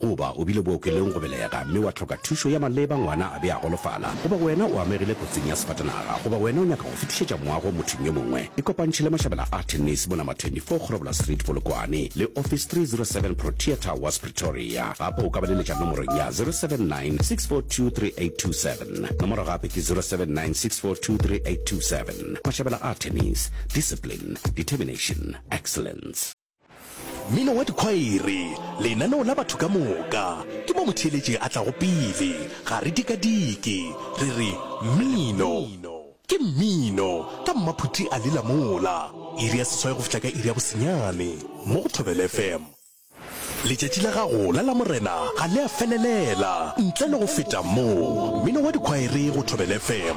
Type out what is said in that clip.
Goba o bile bookelong go belega mme wa hloka thušo ya maleba, ngwana a be a golofala, goba wena o amegile kotsing ya sefatanaga, goba wena o nyaka go fetišetša moago mothong yo mongwe, ikopantšhe le mašabela a tennis mo Number 24 Kgorobola Street, Polokwane, le Office 307 Protea Towers, Pretoria. Gape o ka ba leletša nomorong ya 079 642 3827. Nomoro gape ke 079 642 3827. Mašabela a tennis, discipline, determination, excellence. Mmino wa dikhwaere, lenaneo la batho ka moka, ke mo motheeletši a tlago pele. Ga re dikadike, re re, Mmino! Ke mmino, ka mmaphuti a lela mola. Iri ya seswai go fihla ka iri ya bosenyane, mo go Thobela FM. Letšatši la gago la Lamorena ga le a felelela ntle le go feta mo. Mmino wa dikhwaere go Thobela FM.